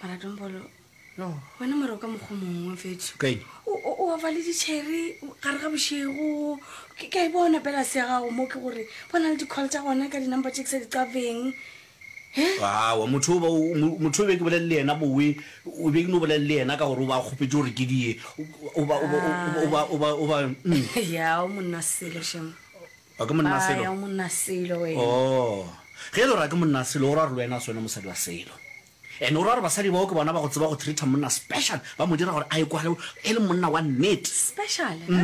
mara dombolo no wena mara o ka mokgwa mongwe fetso o ofa le ditšhere gare ga bošego ke ka e bona pela se ya gago mo ke gore bona le di-call tsa gona ka di-number tse ke sa di qafeng awa motho o be ke bolelele yena bowe o be ke no bolelele yena ka gore o ba kgopetse gore ke die o ba mm. yao monna selo shemo O ke monna Aya Selo? o monna Selo wena. Oo. Ge e le gore a ke monna Selo, o ra gore le wena a se wena mosadi wa Selo. And o ra gore basadi bao ke bona ba go tseba go treater monna special, ba mo dira gore a ekwale e le monna wa nnete. Special? He?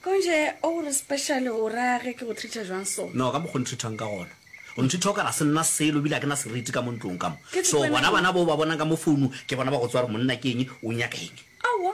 Konje o gore special o ra ge ke go treater jwang so? No, ka mokgwa o ntreatang ka gona. O ntreater o ka re a se nna Selo ebile a ke na seriti ka mo ntlong ka mo. Ke se So, kwena bona ke- bana bao ba bonang ka mo founung, ke bona ba go tseba gore monna ke eng, o nyaka eng. Aowa.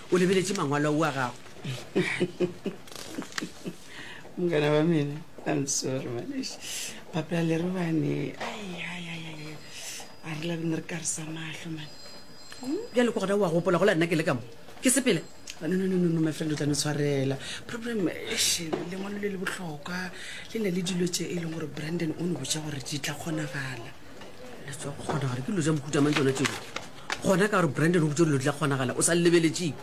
o lebeletše mangwalo a ua gago mokana wa mene i'm sorry manesh papela le re bane a re labene re ka re sa mahlo mane bjale ko gona wa gopola go la nna ke le ka mo ke sepele nononono my friend o tla no tshwarela problem ese lengwalo le le botlhokwa le na le dilo tse e leng gore brandon o ne botsa gore di tla kgonagala le tswa go kgonagala ke dilo tsa mohuta mang tsona tseo gona ka gore brandon o botse dilo di tla kgonagala o sa lebeletseng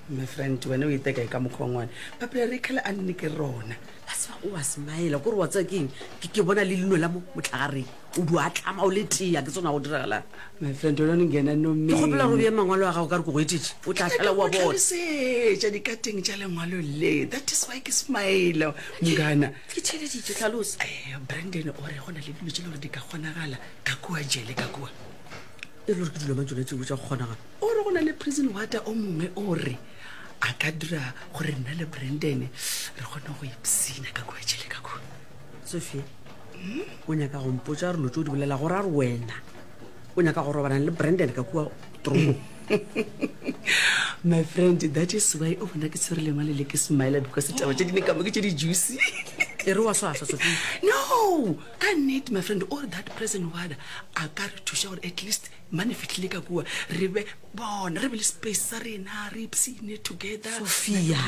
my friend wena o iteka e ka mokgwa ngwane papela re kgale a nne ke rona a se o a smile kore wa tsaya keng ke bona le leno la mo motlhagareng o di a tlama o le tea ke tsona go diragalang my friend o lone ngena no me ke gopela go bea mangwalo a gago ka re ko go etetse o tla tlhala wa bonasetša dikateng tša lengwalo le that is why ke smile mongana ke theleditše tlhalosa eh, brandon o re go na le dilo tse le gore di ka kgonagala ka kua jele ka kua e le gore ke dilo mang tsone tseo tsa go kgonagala o re go na le prison water o mongwe o re a ka dira gore nna le brandon re kgone go ipsina ka kua jele ka kua sophie o nyaka gompotsa re lo tse o di bolela gore a re wena o nyaka go robanang le brandon ka kua true my friend that is why o bona ke tshwere lengwa le le ke smile because taba tse dine kamo ke tse di-juicy e re wa swaswa sofi no ka nnete my friend all that present wada a ka re thuša gore at least mane fitlhile ka kua re be bona re be le space sa rena re ipsine together sophia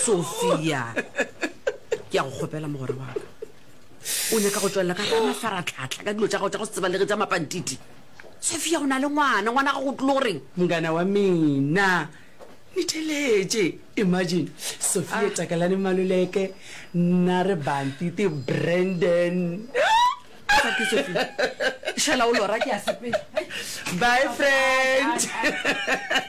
sophia ke ya go kgopela mogore waka o nyaka go tswelela ka ga mafaratlhatlha ka dilo tsa gago tsa go se tsebalege tsa mapantiti Sofia, o na le ngwana, ngwana ga go tlo go reng? Mngana wa mina, ni theletše. Imagine, Sofia, ah. Takalane Maluleke, nna re bantiti Brandon. Shela o lora ke a sepela. Bye friend.